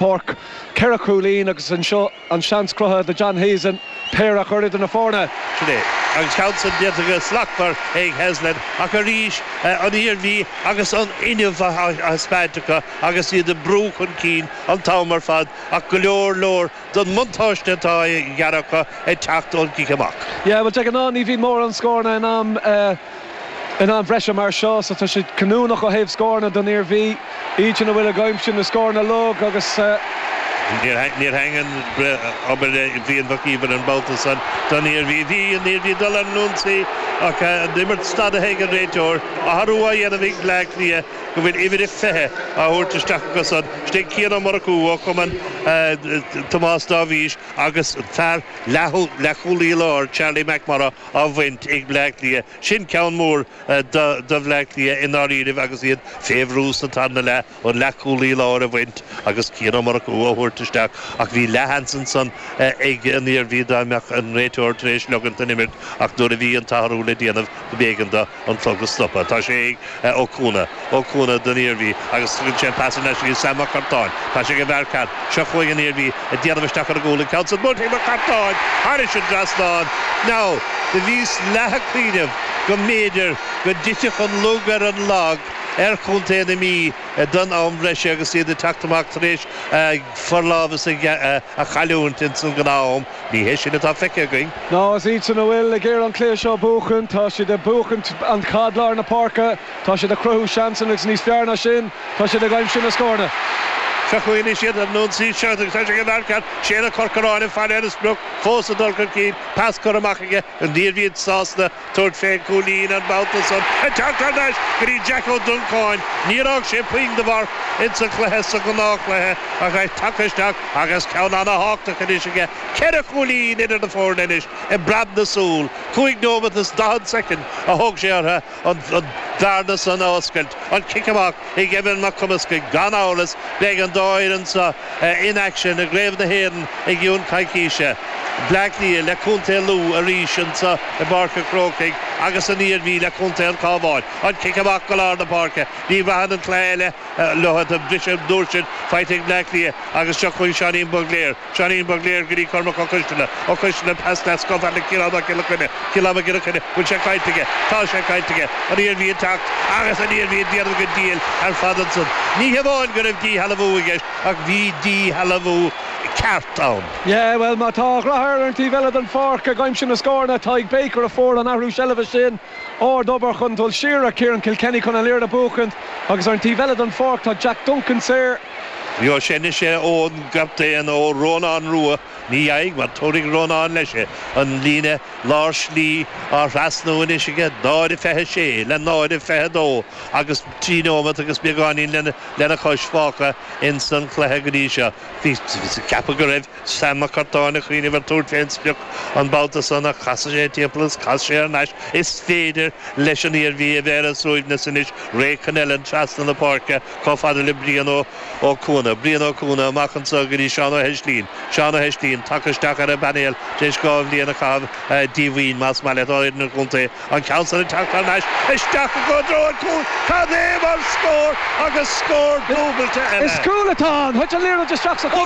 páirc, ceithre chúilín agus anseo an seans cruthaithe do John Heslin péire a chur idir na foirne. Clé, agus an ceann san déanta go slachtmhar ag Heslin ach arís an iarmhí agus an fuinneamh á thaispeáint acu agus iad ag brú chun cinn an t-am ar fad ach go leor leor den mbuntáiste atá á ghearradh acu ag teacht ón gcic amach. Yeah, bhuel de ghnáth ní bhíonn mórán scóranna in am. In am breise mar seo so tá sé cinniúnach ó thaobh scóranna don Iarmhí, áit ina bhfuil ag aimsiú na scóranna. Nó agus. Níor thaithin obair Brian Howard an babhta san don Iarmhí. Bhí an Iarmhí ag dul ar an ionsaí ach an imirt stadaithe ag an réiteoir. Athrú á dhéanamh ag Bleá Cliath go bhfuil uimhir a 20 á thabhairt isteach acu san. Istigh Cian Ó Murchú ó chumann Tomás Dáibhís agus fear leathchúlaí láir, Charlie McMorrough. á bhaint ag Bleá Cliath. Sin ceann mór do Bhleá Cliath i ndáiríribh agus iad fé bhrú sa tarna leath an leathchúlaí láir a bhaint agus Cian Ó Murchú á thabhairt isteach ach bhí leathsheans ansan ag an Iarmhí dá mbeadh an réiteoir tar éis leogaint don imirt ach nuair a bhí an t-athrú le déanamh dob éigean do an clog a stopadh. Tá sé ag Ó Cuana. Ó Cuana don Iarmhí agus tugann sé an pas in aice do Sam Mac Cartáin. Tá sé ag an bhfear ceart. Seo chugainn an Iarmhí ag déanamh isteach ar an gcúl ag ceann sall, bhuail Mac Cartáin! Thairis an dtrasnán! Now, do bhíos leath ag cuimhneamh go mb'fhéidir go dtitfeadh an lug ar an lag ar Chontae na hIarmhí don am breise agus iad ag teacht amach tar éis an forlámhas a chailliúint ins an ngnáth-am. Ní hé sin atá feicthe againn. Nó is iadsan a fhuil ag iarraidh an cluiche seo a bhuachan. Tá siad ag buachaint an chaid i lár na páirce. Tá siad ag cruthú seansanna agus níos fearr ná sin, tá siad ag aimsiú na scóranna. Socraíonn siad an ionsaí seo agus tá sé ag an bhfear ceart. Séaghan Ó Corcaráin ag faire ar an sprioc fós ag dul chun cinn. Pas curtha amach aige. Ní rabhadar sásta. tabhairt fén cúilín an babhta san, ag teacht thar n-ais go dtí Jack Ó Duncáin. Níor fhág sé puinn de mharc insa chluiche sa ghnáthchluiche ach é tagtha isteach agus ceann ana-thábhachtach anois aige. Ceithre chúilín idir na foirne anois i bpreab na súl. Cúig nóimeat is daichead soicind a thóg sé orthu an bhearna san a oscailt. An cic amach ag Evan Mac Cumascaigh. Gan amhras, beidh an dá fhoireann so. in aicsean i gCraobh na hÉireann i gcionn coicíse, Bleá Cliath le Contae Lú arís anseo i bPáirc an Chrócaigh agus an Iarmhí le Contae an Chábháin. An cic amach go lár na páirce, ní bhrathann an cluiche eile leo a bhriseadh an uair sin faighte ag Bleá Cliath agus seo chugainn Seáinín Bugler, Seáinín Bugler go dtí Cormac Ó Coistealla, Ó Coistealla pas lasctha go dtí Cillian Mac Giolla Choinne. Cill Ama giorra coinne. Bhfuil sé caillte aige? Tá sé caillte aige. An Iarmhí ag teacht agus an Iarmhí ag déanamh go diail ar fad ansan. Ní hamháin go raibh díshealbhú i gceist ach bhí díshealbhú ceart ann. Yeah, bhuel, má tá a dheartháir ar an taobh eile den pháirc ag aimsiú na scóranna, Tadhg Baker a fuair an athrú seilbhe sin, ardobair chun dul siar ar Ciarán Kilkenny chun an liathróid a bhuachaint agus ar an taobh eile den pháirc tá Jack Duncan saor. An bhfaighidh sé anois é ón gcaptaen, ó Rónán Rua, Ní bhfaighidh, mar tabharfaidh Rónán leis é, an líne lár slí á thrasnú anois aige, 0 26 le 0 22 agus trí nóimeat agus beagáinín lena chois fágtha ins an chluiche go dtí seo. Bhí mé ag ceapadh go raibh Sam Mac Cartáin ag cuimhneamh ar tabhairt fén sprioc an babhta san ach casfaidh sé timpeall agus casfaidh sé thar n-ais. Is féidir leis an Iarmhí a bheith ar a suaimhneas anois, Ray Connellan trasna na páirce, Chomh fada le Brian Ó Cuana, Brian Ó Cuana, amach anseo go dtí Seán Ó hEislín, Seán Ó hEislín, tagtha isteach ar an bpainéal tar éis dhá bhliain a chaitheamh díomhaoin, más maith leat, ar fhoireann an chontae. An ceann san ag teacht thar n-ais, isteach i dtreo an chúil, cad é mar scór agus scór dúbailte eile! Is cúl atá ann! Thuit an liathróid isteach sa chúl.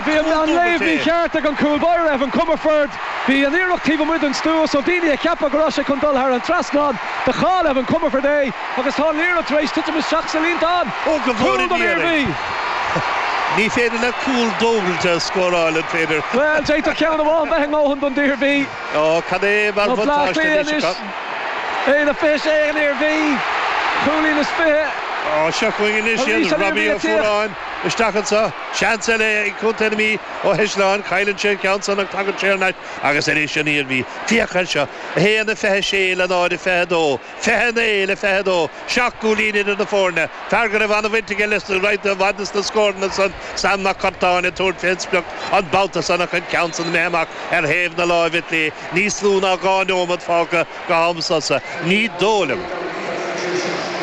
Bhí an léamh mícheart ag an cúl báire, Evan Comerford. Bhí an iarracht taobh amuigh den stua so daoine ag ceapadh go raibh sé chun dul thar an trasnán. Do chaill Evan Comerford é. Agus tá an liathróid tar éis titim isteach sa líontán! Ó, go fóill don Iarmhí! Ní féidir le cúl dúbailte a scóráil, an féidir? Bhuel, d'fhéadfadh ceann amháin bheith a ndóthain don Iarmhí. Ó, cad é mar bhuntáiste anois acu? Aon a fiche sé ag an Iarmhí. Cúilín is fiche. Ó, seo chugainn anois iad, Robbie Ó Fuaráin isteach anseo. Seans eile ag Contae na hIarmhí, Ó hEislín, cailleann sé an ceann san ach tagann sé thar n-ais agus arís an Iarmhí. Féach air seo, a haon a fiche sé le náid a fiche dó. 29 le 22, seacht gcúilín idir na foirne. Fear go raibh an-bhaint aige leis na greadta i bhfad is na scóranna san, Sam Mac Cartáin, ag tabhairt fén sprioc an babhta san ach an ceann san imithe amach ar thaobh na láimhe clé. Níos lú ná dhá neomat fágtha go ham sosa. Ní dóigh liom.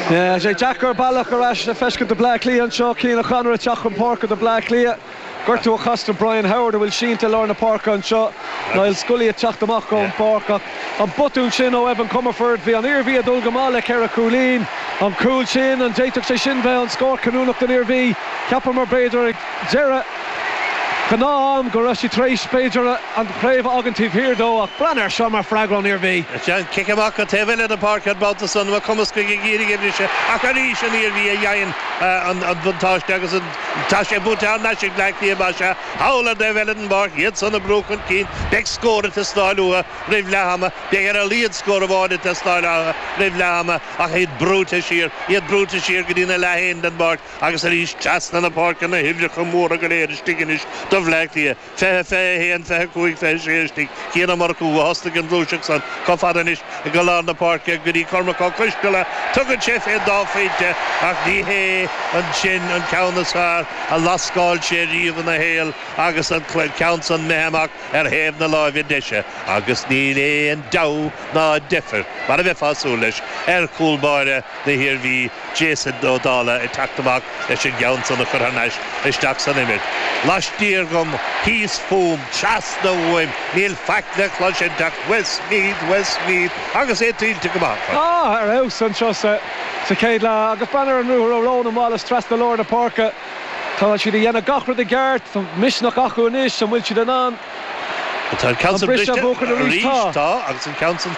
Tá sé deacair bealach ar ais le feiscint do Bleá Cliath anseo. Cian O'Connor ag teacht chun páirce do Bleá Cliath. Gortú ag cur as do Brian Howard a bhfuil sínte i lár na páirce anseo. Niall Scully ag teacht amach ón bpáirc ach an botún sin ó Evan Comerford. Bhí an Iarmhí ag dul go maith le ceithre chúilín. An cúl sin, an d'fhéadfadh sé sin bheith an scór cinniúnach don Iarmhí? Cheapamar b'fhéidir ag deireadh ghnáth-am go raibh siad tar éis b'fhéidir an chraobh a fhágaint taobh thiar dóibh ach breathnaigh air seo mar freagra ón Iarmhí. Seans cic amach go taobh eile na páirce an babhta san, Mac Cumascaigh ag iarraidh é a bhriseadh ach arís an Iarmhí a fhaigheann an buntáiste agus an. Tá sé buaite thar n-ais ag Bleá Cliath más ea, thall ar an dtaobh eile den bpáirc, iad san ag brú chun cinn, beidh scór ag teastáil uathu roimh leath ama, beidh ar a laghad scór amháin ag teastáil uathu roimh leath ama ach iad brúite siar, iad brúite siar go dtí na leath féin den bpáirc agus arís trasna na páirce na huimhreacha móra go léir istigh anois do Bhleá Cliath. 20, 21, 25, 26 istigh, Cian Ó Murchú, a thosnaigh an ghluaiseacht san chomh fada anois i gcroílár na páirce go dtí Cormac Ó Coisteala, tugann sé fé an dá phointe ach ní hé ansin an ceann is fearr a lascáil sé riamh ina shaol agus an ceann san imithe amach ar thaobh na láimhe deise agus níl aon deabhadh ná deifir, mar a bheifeá súil leis, ar chúl báire. na hIarmhí, Jason Ó Dála ag teacht amach leis an gceann san a chur thar n-ais isteach san imirt. Laistiar dhom, thíos fúm, trasna uaim, níl faic le cloisint ach Westmeath, Westmeath agus é tuillte go maith acu. Ar fheabhas anseo sa chéad leath agus bean ar an ruathar ó Ronan Wallace trasna lár na páirce. Tá siad ag déanamh gach rud i gceart. Tá misneach acu anois. An bhfuil siad in ann? Tá an ceann san briste arís, tá, agus an ceann san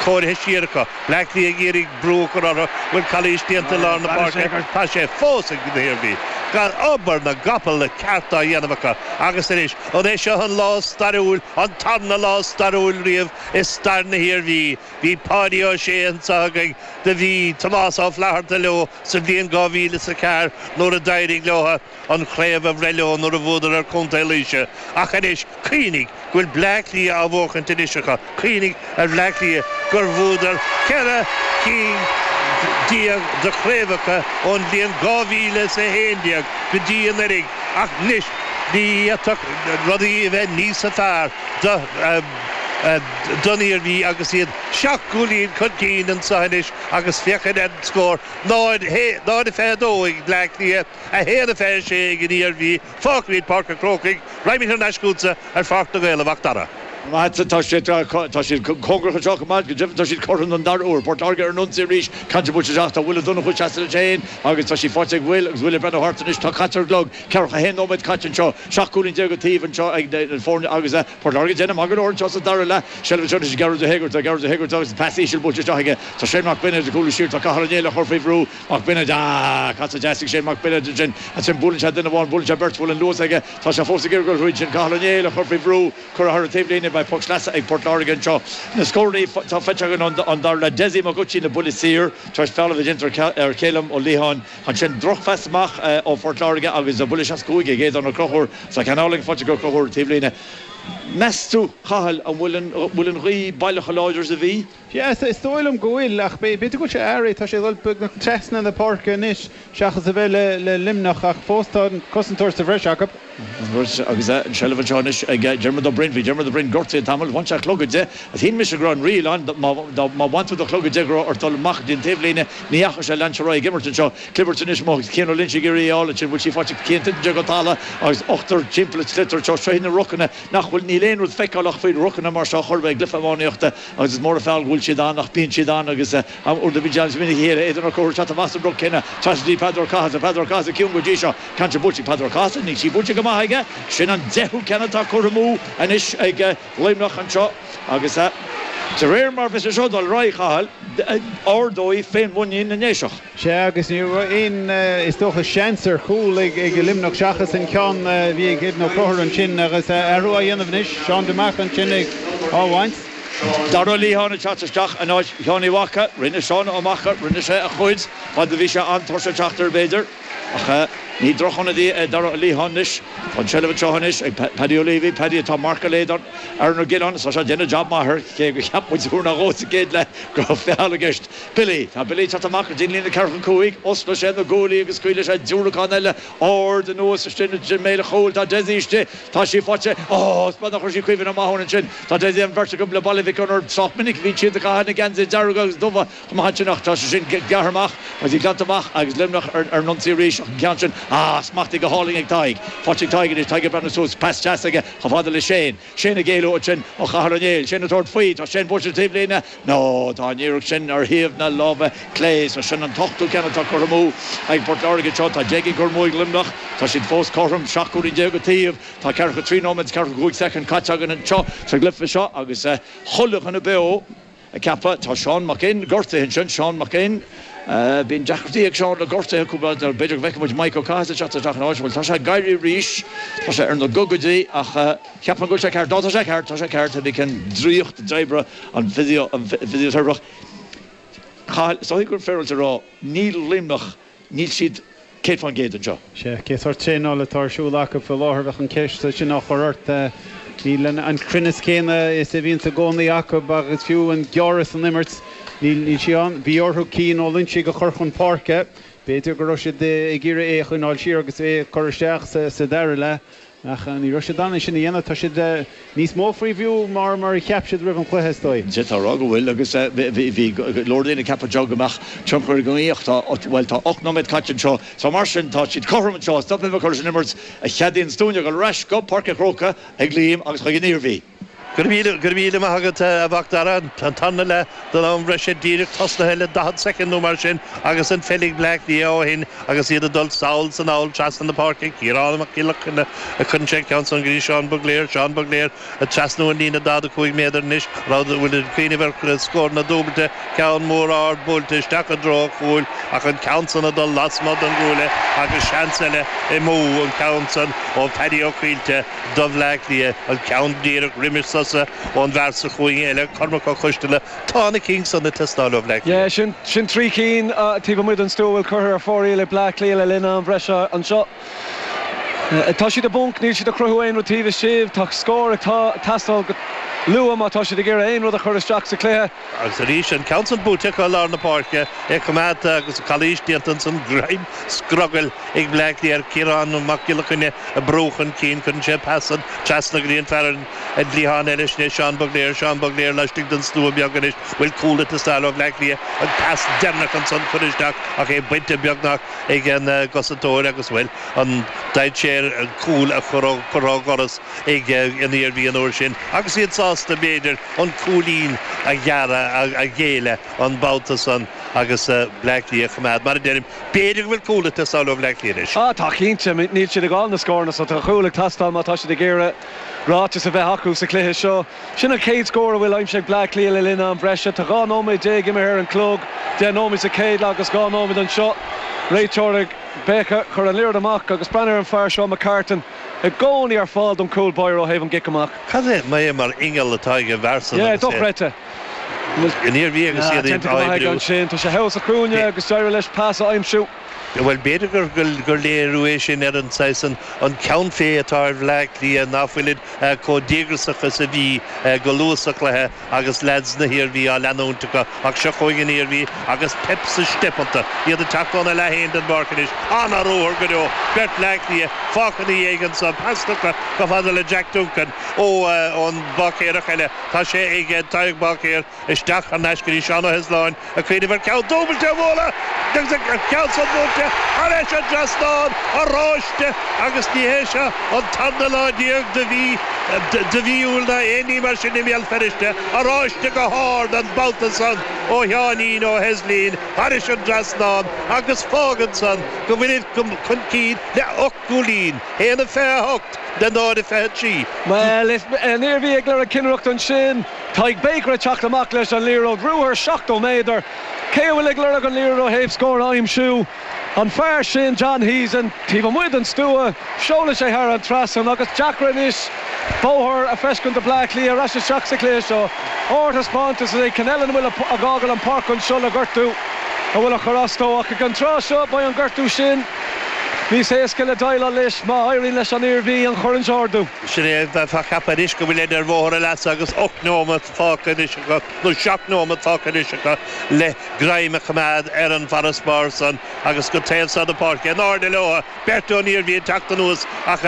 comhairithe siar acu. Bleá Cliath ag iarraidh brú a chur orthu go bhfuil calaois déanta i lár na páirce. Tá sé fós ag na hIarmhí. Gan obair na gcapall le ceart á dhéanamh acu. Agus anois, an é seo an lá stairiúil, an tarna lá stairiúil riamh i stair na hIarmhí? Bhí Páidí Ó Sé anseo againn do bhí Tomás Ó Flatharta leo sa bhliain 2004 nuair a d'éirigh leo. an chraobh a bhreith leo nuair a bhuadar ar Chontae Laoise ach anois cuimhnigh go bhfuil Bleá Cliath á bhuachaint anois acu, cuimhnigh ar Bhleá Cliath gur bhuadar ceithre cinn déag de chraobhacha ón bhliain 2000 is a haon déag go dtí anuiridh ach anois ní fhéadfadh rudaí a bheith níosa fearr don Iarmhí agus iad seacht gcúilín chun cinn anseo anois agus féachaint ar an scór, náid, náid a fiche a dó ag Bleá Cliath. 1 a fiche 6 ag an Iarmhí, fágfaimid Páirc a' Chrócaigh, raghaimid thar n-ais chugatsa ar Pháirc na nGael a Mhac Dara. Maith tá siad, tá siad cóngarach anseo chomh maith, go deimhin tá siad cothrom don dara huair. Port Láirge ar an ionsaí arís, ceann atá buailte isteach, tá Will Ó Donnchú seasta leis féin agus tá sí faighte ag Will agus Will ag breathnú thart anois, tá caite ar an gclog, ceathracha a haon nóiméad caite anseo, seacht gcúilín déag an taobh anseo ag na foirne agus Port Láirge ag déanamh maith go leor anseo sa dara leath. Seilbh anseo anois ag Gearóid Ó hÉigeartaigh, Gearóid Ó hÉigeartaigh agus pas íseal buailte isteach aige, tá Seán Mac Bionaid ag gabháil siar, tá Cathal Ó Néill á chur faoi bhrú, Mac Bionaid, ag casadh isteach ansin, Mac Bionaid, ansin, as sin buaileann sé duine amháin, buaileann sé beirt, an bhfuil an luas aige, tá sé fós ag iarraidh dul thríd sin, Cathal Ó Néill á chur faoi bhrú, curtha thar an taobhlíne, beidh poc sleasa ag Port Láirge anseo, na scórannaí atá feicthe againn insan dara leath, Desi Mac Oitín le buille saor tar éis feall a bheith déanta ar Chalum Ó Liatháin, ansin drochphas amach ó Phort Láirge agus buille seasca cúig ag Aodán Ó Conchúir, sa chanáil ag Fáilte go Conchúir taobhlíne, meas tú, Cathal, an bhfuil an bhfuil an ghaoth baileach chomh láidir is a bhí? Feasta, is dóigh liom go bhfuil, ach b'fhéidir go bhfuil sé airí, tá sé ag dul beagnach trasna na páirce anois seachas a bheith le Luimneach, ach fós tá an cosantóir sa bhreis acu. Agus an seilbh anseo anois ag Diarmuid Ó Broin, bhí Diarmuid Ó Broin gortaithe tamall, bhain sé a chlogad de, ach shíl mise go raibh an riail ann má bhain tú do chlogad de go raibh ort dul amach go dtí an taobhlíne, ní fhaca sé leantar ag imirt anseo, clibirt anois amuigh agus Cian Ó Loinsigh ag iarraidh é a fháil ansin, bhfuil sí faighte Cian tite go talamh agus ochtar timpeall an tsliotair anseo, sna rucanna nach bhfuil, níl aon rud feiceálach faoi rucanna mar seo, chóir a bheith i gcluiche iománaíochta. agus is mór an feall go bhfuil siad ann, nach mbíonn siad ann agus an uair a bhíonn sé ann is minic a chéile, é d'fhan ar comhar teacht amach sa mbloc céanna trasna go dtí Peadar Ó Cathasaigh, Peadar Ó Cathasaigh ciúin go dtí seo, ceann buailte ag Peadar Ó Cathasaigh, níl sí buailte go maith aige, sin an deichiú ceann atá curtha amú anois ag Luimneach anseo agus de réir mar bheas sé seo ag dul ar aghaidh, Cathal, ardóidh féinmhuinín na nDéiseach. Sea, agus ní raibh aon, is dócha, seans ar chúl ag Luimneach seachas an ceann a bhí ag Aidan Ó Conchúir ansin agus athrú á dhéanamh anois, Seán Ó Maca ansin ag imeacht. Dara Liathán ag teacht isteach in áit Sheáin Uí Mhaca. Rinne Seán Ó Maca, rinne sé a chuid, fad a bhí sé ann, tuirse ag teacht air b'fhéidir, ach ní drochionadaí é Dara Liathán anois. Tá an tseilbh anseo anois ag Paddy Leavey, Paddy atá ag marcáil Aaron, Aaron Gillane, is tá sé ag déanamh jab maith air, cé gur cheap muid uair nó dhó sa gcéad leath go raibh feall i gceist. Billy. Tá Billy ag teacht amach go dtí'n líne ceathracha cúig. Oscloidh sé na guaillí agus scaoilfidh sé diúracán eile ard anuas istigh ins an mbéal an chúil. Tá Dessie istigh. Tá sí faighte. Ohh! Is beag nach raibh sí cuimhin amach uainn ansin. Tá Dessie, an bheirt acu le Baile Mhic Gonair sách minic. Bíonn siad ag caitheamh na geansaithe dearga agus dubha chomh maith ansin ach tá sé sin gearrtha amach agus í glanta amach agus Luimneach ar an ionsaí arís ach an ceann sin, ah! Smachtaithe go hálainn ag Tadhg. Faighte ag Tadhg anois. Tadhg ag breathnú suas. Pas deas aige chomh fada le Shane. Shane ag éalú ansin ó Chathal Ó Néill. Shane ag tabhairt faoi. Tá Shane cois taobhlíne. Nó tá an iarracht sin ar thaobh na láimhe clé. Is é sin an t-ochtú ceann atá curtha amú ag Port Láirge seo. Tá deich gcinn curtha amú ag Luimneach. Tá siad fós cothrom, 17 cúilín a taobh. Tá ceathracha trí nóiméad is ceathracha cúig soicind caite againn anseo sa gcluiche seo agus chuile dhuine beo. ag ceapadh. Tá Seán Mac Fhinn gortaithe ansin. Seán Mac Fhinn, Bíonn deacrachtaí ag Seán le gortuithe cúpla uair. B'fhéidir go bhfeicfidh muid Maidhc Ó Cathasaigh ag teacht isteach ina áit. Bhuel, tá sé ag éirí arís. Tá sé ar na gogaidí ach cheapfainn go bhfuil sé ceart. Ná tá sé ceart, tá sé ceart. Cibé cén draíocht a d'oibrigh an, an fisiteiripeach. Cathal, is dóigh gur féaráilte a rá, níl Luimneach. Níl siad 100% anseo. Sea, cé sórt traenáil atá ar siúl acu faoi láthair, bheadh an cheist sin á chur ort. Níl an cruinneas céanna is a bhíonns i gcónaí acu agus fiú an gearradh san imirt, níl sí ann. Bhí orthu Cian Ó Loinsigh a chur chun páirce. B'fhéidir go raibh siad ag iarraidh é a choinneáil siar agus é a chur isteach sa dara leath. Ach ní raibh siad in ann é sin a dhéanamh. Tá siad níos mó faoi bhrú mar mar a cheap siad roimh an chluiche, is dóigh. Sea, tá a rá go bhfuil agus bhí go leor daoine ag ceapadh anseo go mbeadh tionchar ag an ngaoth ach, bhuel, tá ocht nóiméad caite anseo so mar sin tá siad cothrom anseo. Stop beag curtha leis an imirt a cheadaíonn dúinn a dhul ar ais go Páirc an Chrócaigh ag Liam agus chuig an Iarmhí. Go raibh míle maith agat, a Mhacdara. An tarna leath den am bhreise díreach tosnaithe le daichead soicind nó mar sin agus an pheil ag Bleá Cliath ó shin agus iad ag dul sall 's anall trasna na páirce. Ciarán Mac Giolla Chainnigh cuireann sé ceann san go dtí Seán Bugler. Seán Bugler ag trasnú an líne 45 méadar anois. An raibh an bhfuil ag cuimhneamh ar scóranna dúbailte? Ceann mór ard buailte isteach i dtreo an chúil ach an ceann san ag dul lasmuigh den gcuaille agus seans eile amú an ceann san ó Paddy Ó Caoilte. do Bhleá Cliath, an ceann díreach roimis seo ón bhfear sa chúinne eile, Cormac Ó Coistealla. Tá na cinn san ag teastáil ó Bhleá Cliath. Sin sin trí cinn taobh amuigh den stua a bhfuil curtha ar fóraoil ag Bleá Cliath le linn am bhreise anseo. Tá siad i bponc, níl siad ag cruthú aon rud taobh istigh. Tá scór ag teastáil go luath má tá siad ag iarraidh aon rud a chur isteach sa cluiche. Agus arís, an ceann san buaite acu i lár na páirce, é coimeádta agus an calaois déanta ansan, greim scrogaill ag Bleá Cliath. Ciarán Mac Giolla Chainnigh ag brú chun cinn. Cuireann sé pas san trasna go dtí an fear ar an gcliathán eile, sin é Seán Bugler. Seán Bugler laistigh den stua beag anois. Bhfuil cúl ag teastáil ó Bhleá Cliath an pas deireanach ansan curtha isteach ach é bainte beagnach ag an gcosantóir agus, bhuel, an deis ar chúl curtha ó dhoras. ag an Iarmhí an uair sin agus iad sásta, b'fhéidir, an cúilín a ghearradh, a ghéilleadh an babhta san agus Bleá Cliath a choimeád. Mar a deirim, b'fhéidir go bhfuil cúl ag teastáil ó Bhleá Cliath anois. Á, tá cinnte. Níl siad ag fáil na scóranna so tá cúl ag teastáil má tá siad ag iarraidh ráiteas a bheith acu sa chluiche seo. Sin an chéad scór a bhfuil aimsithe ag Bleá Cliath le linn am breise. Tá 12 nóiméad imithe ar an gclog, 10 nóiméad sa chéad leath agus dhá nóiméad anseo. Réiteoir ag béiceach, cuir an liathróid amach agus breathnaigh ar an bhfear seo, McCartan. i gcónaí ar fáil don cúl báire ó thaobh an gcic amach. Cad é mar é mar inneall atá ag an bhfear san agus é in Iarmhí agus iad ag oibriú. Tá sé thall sa chúinne agus d'éirigh leis pas a aimsiú. Bhuel, b'fhéidir gur léiriú é sin ar an saghas an ceann fé atá ar Bhleá Cliath ná fuilid chomh díograsach is a bhí go luath sa chluiche. Agus leaids na hIarmhí á leanúint acu ach seo chugainn an Iarmhí agus pep sa step iontu. Iad ag teacht óna leath féin den bpáirc anois. An-ruathar go deo. Beirt Bhleá Cliathach fágtha ina dhiaidh ansan. Pas tugtha chomh fada le Jack Duncan ó, an Báicéireach eile. Tá sé ag Tadhg Báicéir isteach thar n-ais go dtí Seán Ó hEasláin. Ag cuimhneamh ar cheann dúbailte a bhualadh agus an ceann san buailte thairis an trasnán oráiste agus ní hé seo an tarna lá déag de mhí de mhí Iúil ná aon ní mar sin i mBéal Feirste oráiste go hard an babhta san ó Sheáinín Ó hEislín thairis an trasnán agus fágann san go bhfuilid chun cinn le hocht gcúilín, haon a fiche a hocht, in aghaidh a fiche a trí. Bhuel, bhí an Iarmhí ag lorg cinnireacht ansin. Tadhg Baker ag teacht amach leis an liathróid ruathair 70 méadar. Cé a bhfuil ag lorg an liathróid ó thaobh scór a aimsiú? An fear sin, John Heslin, taobh amuigh den stua, seolann sé thar an trasnán agus deacair anois bóthar a feiscint do Bleá Cliath ar ais isteach sa chluiche seo. Ardthaispeántas a dhein Connellan a bhfuil a fhágail an páirc anseo le gortú a bhfuil a chur as dó ach ag an tráth seo beidh an gortú sin níos éasca le déileáil leis má éiríonn leis an Iarmhí an chorn seo a ardú. Sin é cheapfá anois, go bhfuilid ar bhóthar a leasa agus ocht neomat fágtha anois acu, nó seacht neomat fágtha anois acu, le greim a choimeád ar an bhfarasbarr san agus go taobh seo na páirce. In airde leo, beirt ón Iarmhí ag teacht anuas ach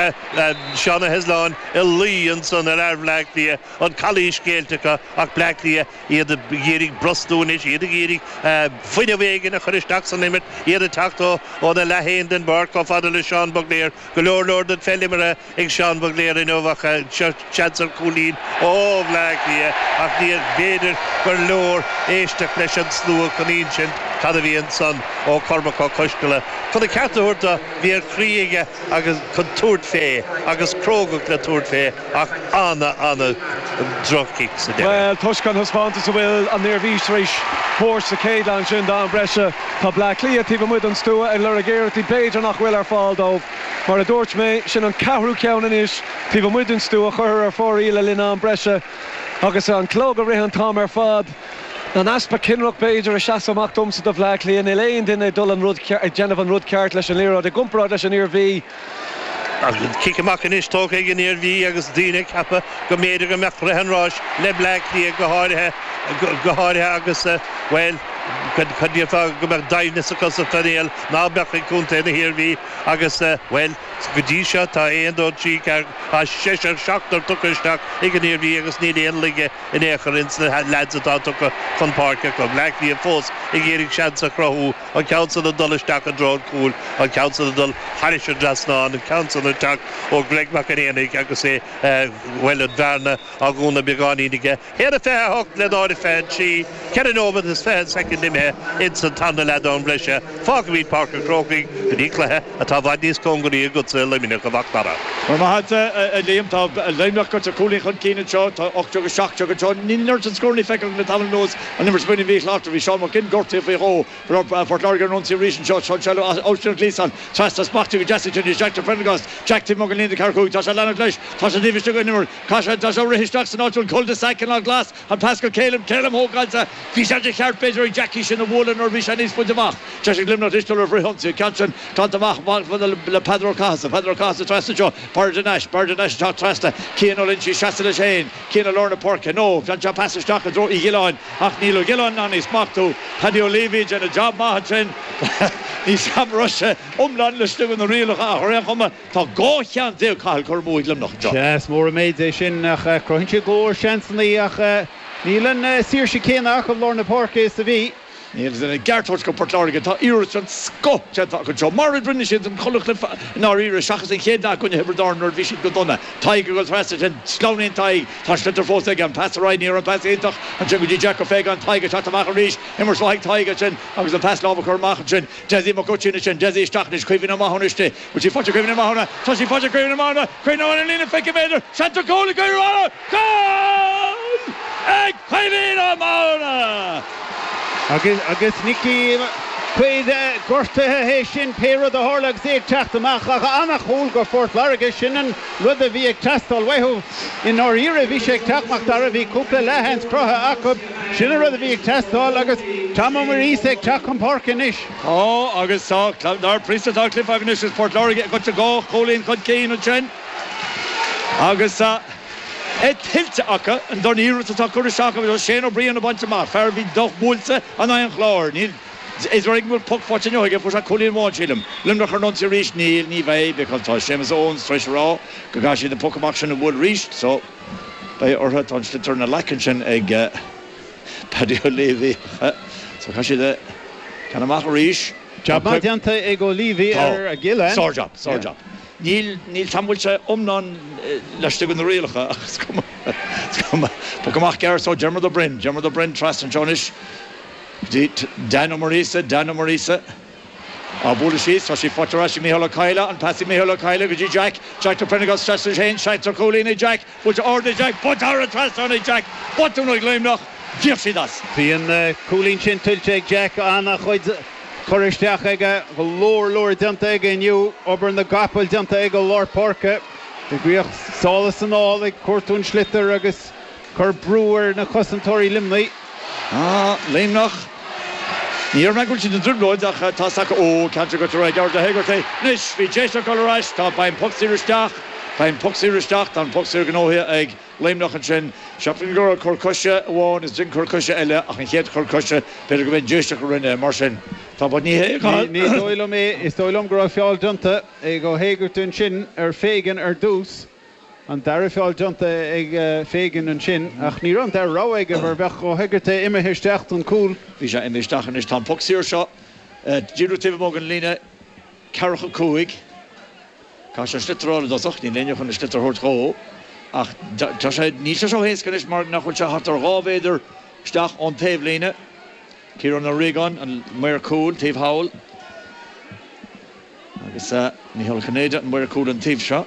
Seán Ó hEisleáin ag luí ansan ar fhear Bhleá Cliath. An calaois géillte acu ach Bleá Cliath, iad ag iarraidh brostú anois, iad ag iarraidh fuinneamh éigin a chur isteach san imirt, iad ag teacht óna leath féin den bpáirc chomh fada le Seán Bugler, go leor leor den pheil imeartha. ag Seán Bugler inniu ach anseo seans ar chúilín ó Bhleá Cliath ach ní b'fhéidir gur leor éisteacht leis an slua chun ínsint cad a bhí ansan ó Cormac Ó Coisteala chun a cheart a thabhairt dó bhí an croí aige agus chun tabhairt fé agus crógacht le tabhairt fé ach ana ana droch chic sa deireadh. Bhuel toisc an thaispeántas a bhfuil an Iarmhí tar éis thabhairt sa chéad leath ansin d'am breise tá Bleá Cliath taobh amuigh den stua ag lorg iarrachtaí b'fhéidir nach bhfuil ar fáil dóibh Mar a dúirt mé, sin an ceathrú ceann anois taobh amuigh den stua curtha ar fóraoil le linn am breise. Agus an clog ag rith an t-am ar fad, an easpa cinnireacht b'fhéidir ag seasamh amach domsa do Bhleá Cliath. Níl aon duine ag dul an rud ag déanamh an rud ceart leis an liathróid i gcomparáid leis an Iarmhí. Cic amach anois tógtha ag an Iarmhí agus daoine ag ceapadh go mb'fhéidir go mbeadh rith an ráis le Bleá Cliath go háirithe go háirithe agus, bhuel, cheapfá go mbeadh doimhneas acusan. Ná beadh ag Contae na hIarmhí agus, bhuel, go dtí seo tá aon, dó, trí, ceathair, cúig, seisear, seachtar tugtha isteach ag an Iarmhí agus níl aon laige in aon chor ins na leaids atá tugtha chun páirce acu. Bleá Cliath fós ag iarraidh seans a chruthú, an ceann san ag dul isteach i dtreo an chúil, an ceann san ag dul thairis an trasnán, an ceann san ag teacht ó Greg Mac an Éanaigh agus é, bhuel, an bhearna á dhúnadh beagáinín aige. 1 a 28 le 0 a 26, 4 nóiméad is 20 soicind imithe ins an tarna leath d'am breise, fágfaimid Páirc an Chrócaigh go dtí cluiche atá i bhfad níos cóngaraí agatsa i Luimneach, a Mhacdara. Go raibh maith agat, a Liam. Tá Luimneach cúilín chun cinn anseo. Tá 18 17 anseo. Níl neart an scór feicthe agam le tamall anuas an imirt a bhain an Mhí Shlachtmhar. Bhí Seán Mac Fhinn gortaithe faoi dhó. Go raibh Port Láirge ar an ionsaí arís anseo. Seán Sello as Oisín Ó Gliasáin trasna as Maitiú go deas ite anois. Jack Prendergast, Jack Tim Ó Gilín 4-5. Tá sé ag leanacht leis. Tá sé dílis do dhuine mar. Chaith sé an t-am seo rith isteach san áit a raibh an cul de sac, cineál glas, an pas go Calum, Calum tógáilte. Bhí sé de cheart, b'fhéidir, ag Jackie sin a bhualadh nuair a bhí sé níos faide amach. D'eisigh Luimneach liostáil ar bhfrithionsaí, an ceann sin, Clann Tomás, Mac Mhathúna le Peadar Ó Cathasaigh, Peadar Ó Cathasaigh trasna anseo, Barry de Nais, Barry de Nais ag teacht trasna, Cian Ó Loinsigh seasamh leis féin, Cian i lár na páirce. No, bhronn sé pas isteach i dtreo Uí Ghiolláin ach níl Ó Giolláin in ann í a smachtú. Paddy Ó Leavey ag déanamh jab maith ansin. Níl a fhios agam an raibh sé iomlán laistigh de na rialacha ach ar aon chuma, Tá dhá cheann déag Cathal curtha amú ag Luimneach anseo. Is mór an méid é sin ach cruthaíonn siad go leor seansanna ach níl an saoirse céanna acu lár na páirce is a bhí. Agus an ceart a thabhairt do Phort Láirge, tá iarracht den scoth déanta acu anseo, mar a rinne siad i ngach cluiche i ndáiríre, seachas an chéad leath i gcoinne Thiobraid Árann nuair a bhí siad go dona. Tadhg ag dul trasna ansin, sleamhnaíonn Tadhg, tá an sliotar fós aige, an pas ar aghaidh, ní raibh an pas iontach, ansin go dtí Jack Ó Faogáin, Tadhg ag teacht amach arís, imirt leo Thaidhg ansin agus an pas láimhe curtha amach ansin, Dessie Mac Oitín ansin, Dessie isteach anois, Caoimhín Ó Mathúna istigh. Tá sí faighte ag Caoimhín Ó Mathúna! Tá sí faighte ag Caoimhín Ó Mathúna! Caoimhín ar líne 20 méadar seans ar chúl ag Caoimhín Ó Mathúna! Cúl ag Caoimhín Ó Mathúna! Agus agus Nicky Quaid gortaithe ansin pé rud a tharla agus é ag teacht amach ach an-chúl do Phort Láirge. Sin an rud a bhí ag teastáil uathu i ndáiríre. Bhí sé ag teacht amach dar a bhí cúpla leathsheans cruthaithe acu. Sin an rud a bhí ag teastáil agus Tom Ó Muiríosa ag teacht chun páirce anois. Tá agus tá. Dar príosta tá cluiche againn anois is Port Láirge i gContae dhá chúilín chun cinn ansin agus é tuillte acu an iarracht atá curtha isteach acu. Tá Shane O'Brien bainte amach, fear a bhí dobuailte in aghaidh an Chláir. Níl a fhios agam an bhfuil poc faighte inniu aige, fuair sé cúilín amháin sílim. Luimneach ar an ionsaí arís, níl, ní bheidh because tá Séamus Owens tar éis a rá go gcaithfidh siad an poc amach sin a bhualadh arís so beidh orthu, tá an sliotar ina ghlac ansin ag Paddy Ó Leavey, So tá siad ag teacht amach arís. Jab maith déanta ag Ó Leavey ar Gillane. Tá, sár jab, sár jab. Níl, níl a fhios agam an bhfuil sé iomlán laistigh de na rialacha ach is cuma, is cuma. Poc amach gearr só Diarmaid Ó Broin, Diarmaid Ó Broin trasna anseo anois go dtí Dan Ó Muiríosa, Dan Ó Muiríosa. Á bualadh síos, tá sí faighte ar ais ag Mícheál Ó Cadhla, an pas ag Mícheál Ó Cadhla go dtí Jack, Jack de Priondargás trasna is é fhéin seans ar chúilín ag Jack, buailte ard ag Jack, buailte thar an trasnán ag Jack, botún ag Luimneach, d'íoc siad as. Bhí an cúilín sin tuillte ag Jack, ana chuid curtha isteach aige, go leor leor déanta aige inniu, obair na gcapall déanta aige lár páirce, bhíodh sall is anall ag cuartú an sliotair agus. Cur brú ar na cosantóirí Luimnigh. Luimneach. Ní deirim go bhfuil siad i dtrioblóid ach tá a fhios acu. Ó, Cantrell go Turai, Gearóid Hegarty. Anois, bhí deis acu dul ar ais. Tá, beidh an poc saor isteach. Beidh an poc saor isteach. Tá an poc saor gnóthaithe ag Luimneach ansin. Cheapfainn go raibh cor coise amháin is then cor coise eile ach an chéad chor coise, b'fhéidir go mba é an Déiseach a rinne é. Mar sin, tá but ní hé. Ní, ní dóigh liom é. Is dóigh liom go raibh feall déanta ag Ó hÉigeartaigh ansin ar Fagan ar dtús an dara feall déanta ag Fagan ansin ach ní raibh an dara rogha aige mar bheadh Ó hEigeartaigh imithe isteach don cúl. Bhí sé imithe isteach anois. Tá an poc saor seo ag díriú taobh amuigh den líne ceathracha cúig. Caithfidh sé sliotar a fháil i dtosach. Níl éinne chun an sliotar a thabhairt dhó ach tá sé, níl sé chomh héasca anois mar nach bhfuil sé thart ar dhá mhéadar isteach ón taobhlíne. Ciarán Ó Riagáin, an maor líne, taobh thall. Agus Micheál Ó Cinnéide, an maor líne an taobh seo.